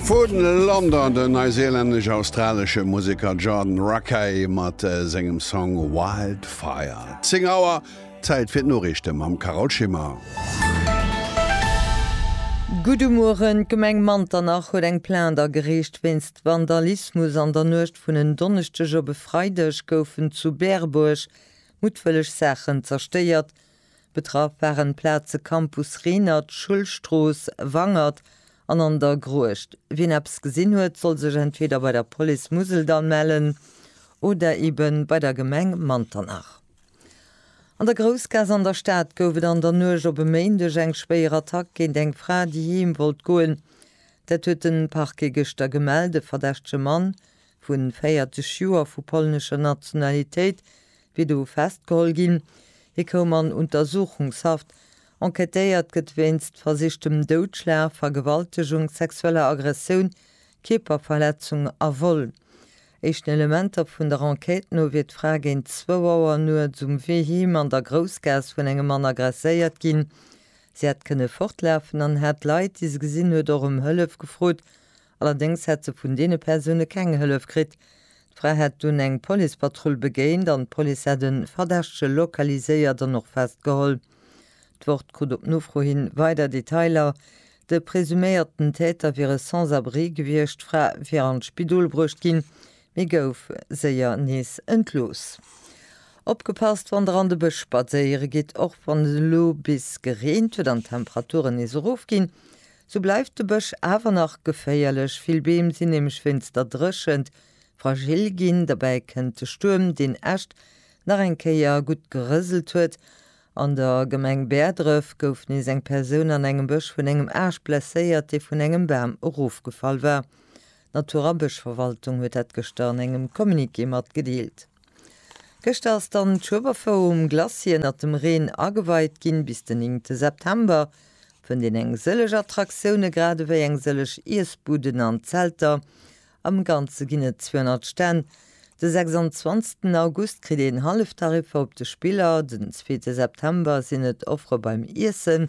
Vu London den neiseelännesch-australesche Museker Jordan Rakei mat sengem Song Wildfire. 10 Auer, Zäit fir d'Noriichte mam Carole Schimmer. Gudde Mueren, D'Gemeng Manternach huet eng Plainte agereecht wéinst Vandalismus. An der Nuecht vun en Donneschdeg op e Freideg goufen zu Berbourg muttwëlleg Saachen zerstéiert. Betraff waren d'Plaze Campus Renert, Schullstrooss, Wangert an An der Gruecht. Wien eppes gesinn huet, soll sech entweder bei der Police Museldall mellen oder ebe bei der Gemeng Manternach. An der Groussgaass an der Stad gouf et an der Nuecht op e Méindeg eng schwéier Attack géint eng Fra, déi heem wollt goen. Dat huet de Parquet gëschter gemellt. E verdächtege Mann vu 40 Joer vu polnescher Nationalitéit wier do festgeholl ginn. Hie koum an Untersuchungshaft. Enquêtéiert gëtt wéinst versichtem Doudschlag, Vergewaltegung, sexueller Aggressioun, Kierperverletzung a Vol. Éischten Elementer vun der Enquête no wier d'Fra géint zwou Auer nuets um Wee heem an der Groussgaass vun engem Mann aggresséiert ginn. Si hätt kënne fortlafen an hätt Leit, déi se gesinn huet, och ëm Hëllef gefrot, Allerdéngs hätt se vun deene Persoune keng Hëllef kritt. D'Fra hätt dunn eng Policepatrull begéint an d'Police hätt e Verdächtege lokaliséiert an och festgeholl. D'Wort krut op Nofro hin weider Detailer, de presuméierten Täter wier e Sans-abri gewiescht, d'Fra wier an d'Spidol bruecht ginn, mee gouf séier nees entlooss. Opgepasst wann der an de Bësch spadséiere gitt! Och wann et elo bis gereent huet an d'Temperaturen nees erofginn, Sou bleift de Bësch awer nach geféierlech, vill Beem sinn nämlech wéinst der Dréchent fragil ginn. Derbäi kënnt de Stuerm, deen Äscht nach eng Kéier gutt gerëselt huet. An der Gemeng Bäerdref gouf nees eng Persoun an engem Bësch vun engem Aascht blesséiert, dee vun engem Bam erofgefall war. D'Naturabëschverwaltung huet dat gëschter an engem Communiqué matgedeelt. Gëschter ass dann d'Schueberfou um Glacier ënnert dem Reen ageweit ginn. Bis den 9 te September fënnt een eng sëllech Attraktioune grad ewéi eng sëllech Iessbuden an Zelter. Am Ganze ginn et 200 Stänn. De 26 ten August kritt een Halleftariffer op de Spiller, den zweete September sinn et Offere beim Iessen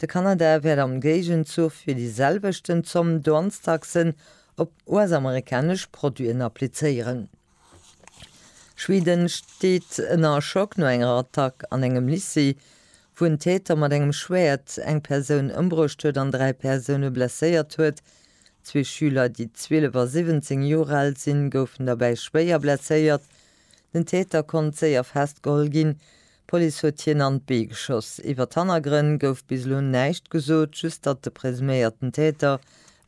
De Kanada wäert am Géigenzuch fir déi selwechten Zomm Douanestaxen op US-amerikanesch Produiten applizéieren. Schweden steet ënner Schock no enger Attack an engem Lycée, wou en Täter mat engem Schwäert eng Persoun ëmbruecht huet an dräi Persoune blesséiert huet. Zwee Schüler, déi 12 a 17 Joer al sinn, goufen derbäi schwéier blesséiert. Den Täter konnt séier festgeholl ginn, D'Police huet hien an d'Bee geschoss. Iwwer d'Hannergrënn gouf bis elo näischt gesot, just datt de presuméierten Täter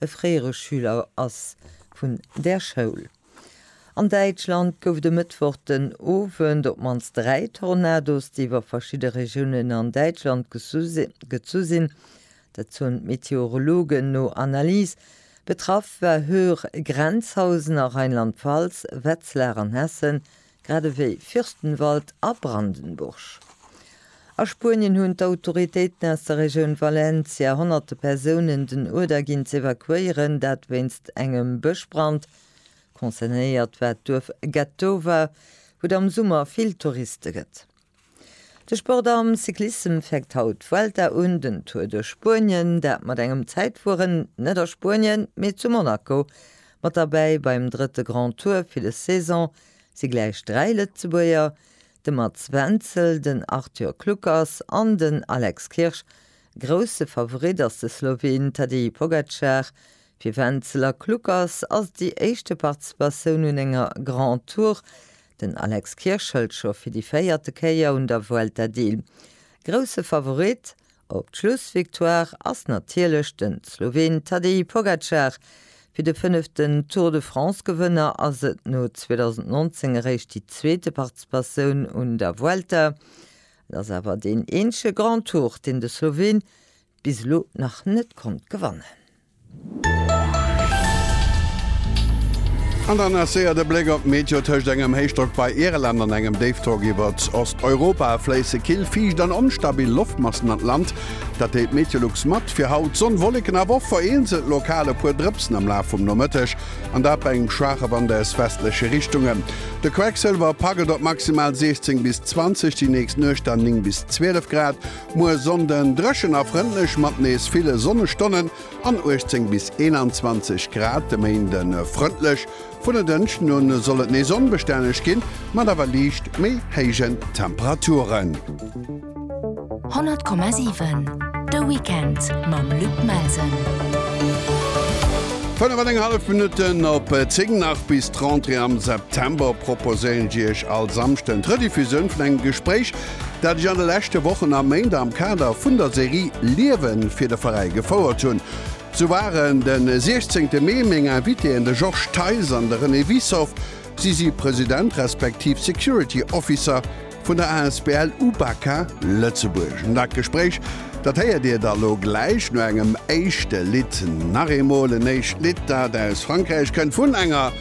e fréiere Schüler ass vun där Schoul. An Däitschland gouf et e Mëttwoch den Owend op d'mannst dräi Tornados, déi iwwer verschidde Regiounen an Däitschland gezu sinn. Dat soen d'Meteorologen no Analyse. Betraff war Höhr, Grenzhausen a Rheinland-Pfalz, Wetzlar an Hessen, Grad ewéi Fürstenwald a Brandenburg. A Spuenien hunn d'Autoritéiten aus der Regioun Valencia honnerte Persounen den Uerder ginn z'evakuéieren, dat wéinst engem Bëschbrand. Concernéiert war d'Duerf Getowa, wou et am Summer vill Touriste gëtt. De Sport am Cyclissem fänkt haut d'Vuelta un, den Tour duerch Spuenien, dat mat engem Zäitfueren net a Spuenien, mee zu Monaco. Mat derbäi beim drëtte Grand Tour fir des Saison si gläich dräi Lëtzebuerger, de Mats Wenzel, den Arthur Kluckers an den Alex Kirsch. Grousse Favorit ass de Sloween Tadej Pogacar. Fir Wenzel a Kluckers ass et déi éischte Participatioun un enger Grand Tour, Den Alex Kirsch hëlt scho fir déi véierte Kéier un der Vuelta deel. Grousse Favorit op d'Schlussvictoire ass natierlech de Sloween Tadej Pogacar. Fir de fënneften Tour de France-Gewënner ass et no 2019 eréischt déi zweete Participatioun un der Vuelta. Et ass awer deen eenzege Grand Tour, deen de Sloween bis elo nach net konnt gewannen. An dann nach séier de Bléck op d'Meteo. Tëscht engem Héichdrock bei Irland an engem Déifdrock iwwert Osteuropa fléisse kill, fiicht an onstabil Loftmassen an d'Land. Dat deelt d'Meteolux mat. Fir haut Sonn, Wolleken, awer och vereenzelt lokal e puer Drëpsen am Laf vum Nomëtteg, an dat bei engem schwaache Wand aus westleche Richtungen. De Quecksëlwer packet op maximal 16 bis 20, déi nächst Nuecht dann 9 bis 12 Grad. Muer Sonnden dréchen a frëndlech mat nees ville Sonnestonnen an 18 bis 21 Grad. De Méinde frëndlech, vun e Dënschden un soll et nees onbestänneg ginn, mat awer liicht méi héijen Temperaturen. 100,7 De Weekend mam Luc Melsen. 5,5 Minutten op 10 Nach bis d'Rentrée am September proposéieren Dir Iech all Samschden d'Rediffusioun vun engem Gespréich dat ech an de leschte Wochen a Méint am Kader vun der Serie Liewen fir de Veräi gefouert hunn. Sou waren de 16 Mee meng Invitéen de Georges Theis an de René Wiessow. Si si President respektiv Security Officer vun der asbl UBAKA Lëtzebuerg. An dat Gespréich, dat héiert Dir da lo gläich no engem éischte Lidd. Nach eemol en éischt Lidd, dat aus Frankräich kënnt, vun enger.